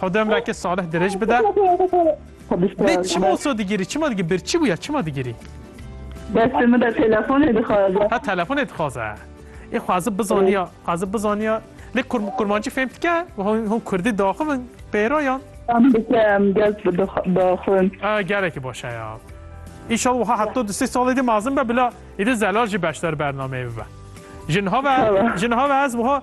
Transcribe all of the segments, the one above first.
Xwedê ömrekê salih dirêj bide. Lê çima wisa digirî? Çima digirî? Bir çi bûye? Çima digirî? Destê min de telefonê dixwaze. Ha telefonê dixwaze. Ê xwazib bizaniya, xwazib bizaniya. Lê kur, kurmancî fêm dike? Hûn hûn kurdî daxivin pêroyan. Em dike em gel daxivin. A gelekî baş e ya. İnşallah waha hetta du sê salê dî mezin be bila êdî zelal jî beşdar bernameyê bibe. Jin have, jin have ez waha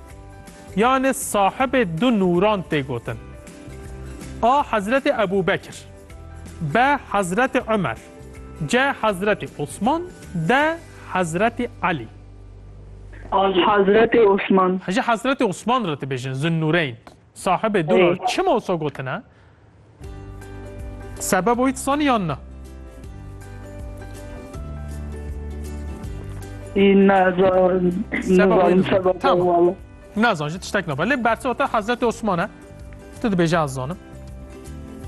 Yanê sahibê du nûran tê gotin. A Hezretê Ebû Bekir. B Hezretê Umer. C Hezretê Osman. D Hezretê Elî. Hezretê Osman. Ji Hezretê Osman re dibêjin Zunnûreyn. Sahibê dûra çima wisa gotine? Sebebo wî disanî yan na? Nazan ji tiştek naba. Lê bersota Hezretê Osman e. Tu dibêje ez zanim.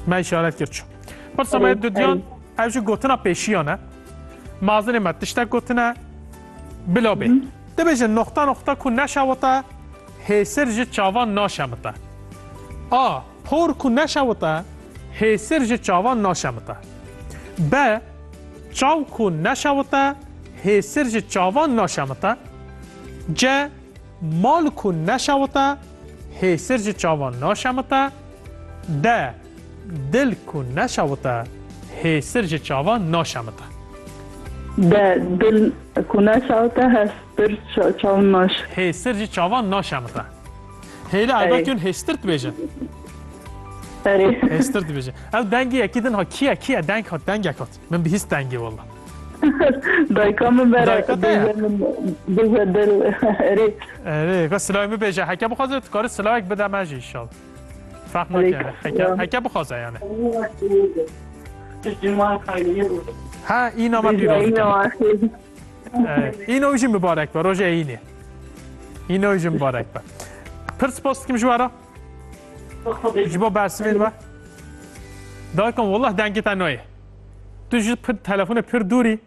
Me işaret kir çi. Pirsa me dudiyan ev ji gotina pêşiyan e. Mazinê me tiştek gotine bila bê. Dibêje noxta noxta ku neşewite Hêsir ji çavan naşemite. A. Por ku neşewite hêsir ji çavan naşemite. B. Çaw ku neşewite hêsir ji çavan naşemite. C. Mal ku neşewite hêsir ji çavan naşemite. D. Dil ku neşewite hêsir ji çavan naşemite. D Dil ku neşewite hêstir ji çavan naş. Hêsir ji çavan naşemite. Hêle Erê. Erda Tun hêstir dibêjin. Erê. Hêstir dibêjin. Ev dengê yekî din ha kiye kiye deng hat dengek hat. Min bihîst dengê walla. Dayka min bere Dayka te ya? bêje min bêje dil. Erê. Erê ka silayê min bêje heke bixwaze tu karî silayek bide me jî inşallah. Fehmeke heke heke bixwaze yani. Ha îna me pîroz dikim. Îna wî jî mibarek be rojê Eynê. Îna wî jî mibarek be. Pir spas dikim ji we re. Ji bo bersivên we. Dakim wallah dengê te nayê. Tu ji telefonê pir dûrî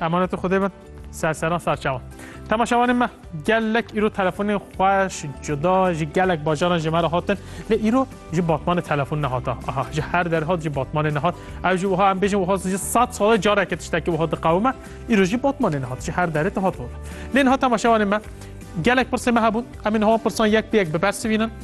Emanet Xwedê bin serseran serçewan. Temaşewanên me gelek îro telefonên xweş cuda ji gelek bajaran ji me re hatin lê îro ji batmanê telefon nehata. Aha ji her derhat ji batmanê nehat. Ew ji wiha em bêjin wiha ji sed salê careke tiştekî wiha diqewime îro jî batmanê nehat ji her derê dihat. Lê niha temaşewanên me gelek pirsê me hebûn em ê niha pirsan yek bi yek bibersivînin.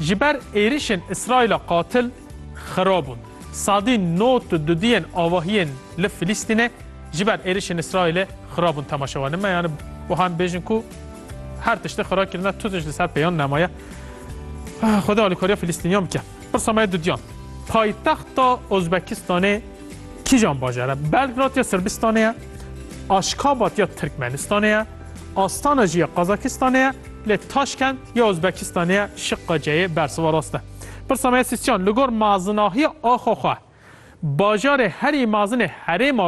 Ji ber êrişên Îsraîla qatil xira bûn. Sadî nod tu dudiyên avahiyên li Filîstînê ji ber êrişên Îsraîlê xira bûn temaşe wan. Me yani wiha em bêjin ku her tiştê xira kirine tu tişt li ser pêyan nemaye. Xweda alîkariya Filîstîniyan bike. Pirsa me dudiyan. Paytexta Ozbekistanê kîjan bajar e? Belgrad ya Sirbistanê ye? Aşkabat ya Tirkmenistanê ye? Astana jî ya Qazakistanê ye? Lê Taşkent ya Uzbekistanê ye, Şiqqa C'yê bersiva rast e. Pirsa me ya Sîsçan, li gor mazinahiya axa xwe, bajarê herî mazinê herêma